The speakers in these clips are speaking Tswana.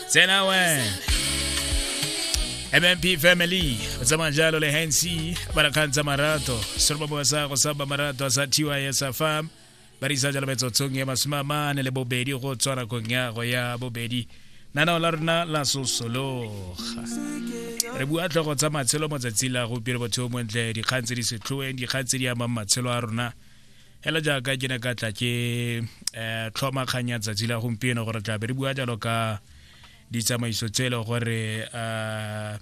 tsena we mmp family o tsamaya jalo le hansi ba re kgang tsa marato seroba boa sa go saba marato a sa thiwa ya sa farm ba re isa jalo metsotsong ya masome a mane le bobedi go tswa nakong ya go ya bobedi nanao la rona la sosologa re bua tlhogo tsa matshelo motsatsi la gopile botho montle dikgang tse di setlhoeng dikgang tse di amang matshelo a rona hela jaaka ke ne ka tla ke um tlhoma kgang ya tsatsi la gompieno gore tla be re bua jalo ka ditsamaiso tse e le gore um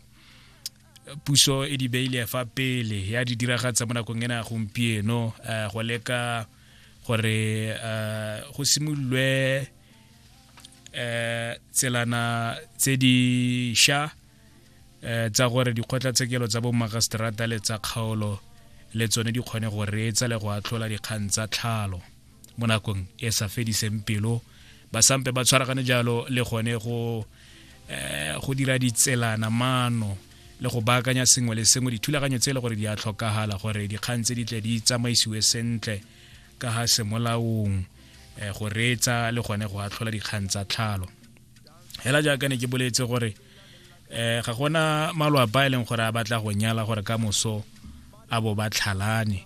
puso e di beile fa pele ya di diragatsa mo nakong ena gompieno um go leka gore um go simololwe um tselana tse di sha eh, tsa gore dikgotlatshekelo tsa bomagaseterata le tsa kgaolo le tsone di kgone go reetsa le go atlhola dikgang tsa tlhalo mo nakong e sa fediseng pelo ba sampe ba tshwaragane jalo le gone go eh, go dira ditselana mano le go baakanya sengwe le sengwe dithulaganyo tse e le gore di a tlhokagala gore dikgang tse di tle di tsamaisiwe sentle ka ga semolaong eh, go reetsa le gone go atlhola dikgang tsa tlhalo hela jaaka ne ke boletse gore eh ga gona malwapa e leng gore a batla go nyala gore ka moso a bo ba tlhalane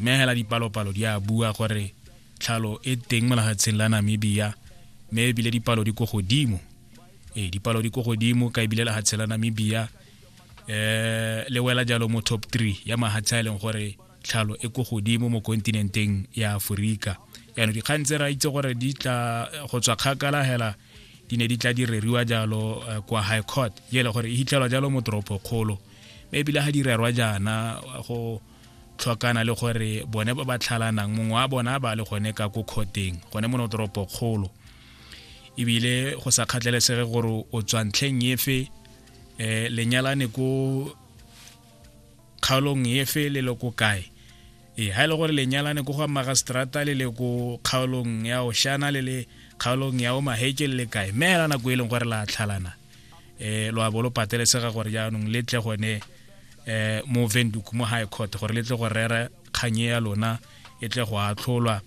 mme hela dipalopalo di a bua gore tlhalo e teng mo lefatsheng la namibia mme ebile dipalo di ko godimo ee dipalo di ko godimo ka ebile lefatshe la namibia eh le wela jalo mo top three ya mahatsha e leng gore tlhalo e ko godimo mo kontinenteng ya aforika yaanong dikgang tse ra itse gore di tla go tswa kgakala hela di ne di tla di reriwa jalo eh, kwa high court e le gore e hitlhelwa jalo mo toropo kgolo mme ebile ga di rerwa jaana go tlhokana le gore bone ba ba tlhalanang mongwe wa bona ba le gone ka ko kgoteng gone mo toropo kgolo ebile go sa kgatlhelesege gore o tswa ntlheng efe um lenyalane ko kgaolong efe le le ko kae ee ga e le gore lenyalane ko go magastrata le le ko kgaolong ya oshana le le kgaolong ya omaheke le le kae mme hela nako e leng gore la tlhalana um lo a bo lo patelesega gore jaanong le tle gone um mo venduk mo high court gore le tle go rera kganye ya lona e tle go atlholwa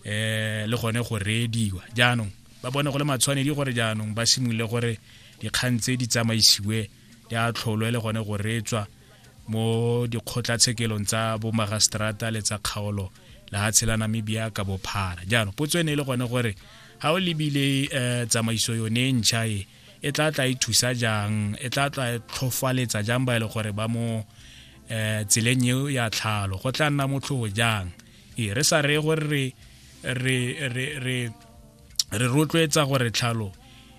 um le gone go reediwa jaanong ba bone go le matshwanedi gore jaanong ba simolole gore dikgang tse di tsamaisiwe ya tlholo e le gone go reetswa mo dikgotlatshekelong tsa bomagaseterata le tsa kgaolo lefatshe la namibia ka bophara jaanong potso e ne e le gone gore ga o lebile um tsamaiso yone e ntšha e e tla tla e thusa jang e tla tla e tlhofaletsa jang ba e le gore ba mo um tseleng eo ya tlhalo go tla nna motlhogo jang ee re sa reye gore re re re re re rotloetsa gore tlhalo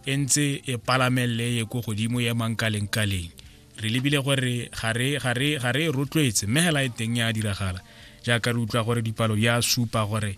e ntse e palamelele ye ko godimo ye mankalengkaleng re lebile gore ga re e rotloetse mme hela e teng ya diragala jaaka re utlwa gore dipalo di a supa gore